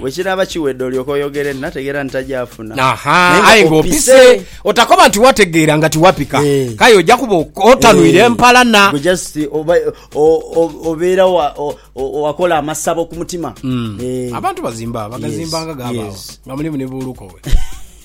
Bwe kinaaba kiwedde olyoke oyogere nti, Nategeera nti tajaafuna. Ahaa, aye nga opise. Otakoba nti wategeera nga tiwapika. Eh. K'aye oja kuba ok- otanwire Eh, empalana. gwe just oba o- o- obeera wa- o- o- wakola amasabo ku mutima Eh. Abantu bazimba, bagazimba nga Yes, gabaagho. yes. Nga mulimu ni buuluko we.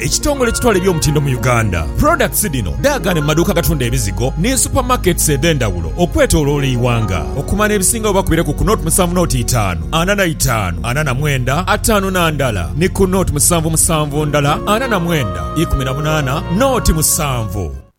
Ekitongole ekitwala eby'omutindo mu Uganda, products dhino dhaagane mu maduuka agatunda ebizigo ni super markets edhendhawulo okwetoloola eighanga. Okumanya ebisingawo bakubire ku ku nought musanvu nought itaanu ana na itaanu ana na mwenda ataanu na ndala ni ku nought musanvu musanvu ndala ana na mwenda ikumi na munaana nought musanvu.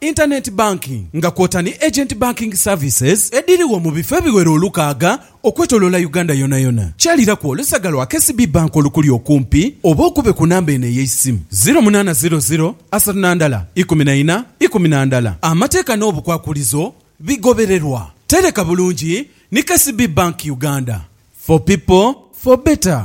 Internet Banking nga kwota ni Agent Banking Services edhirigho mu bifo ebiwera olukaaga okwetoloola Uganda yonayona. Kyaliraku olusaga lwa KCB Bank olukuli okumpi oba okube ku namba eno ey'eisimu, ziro munaana ziro ziro asatu na ndala ikumi na ina ikumi na ndala. Amateeka n'obukwakulizo bigobererwa. Tereka bulungi ni KCB Bank Uganda. For people, for better.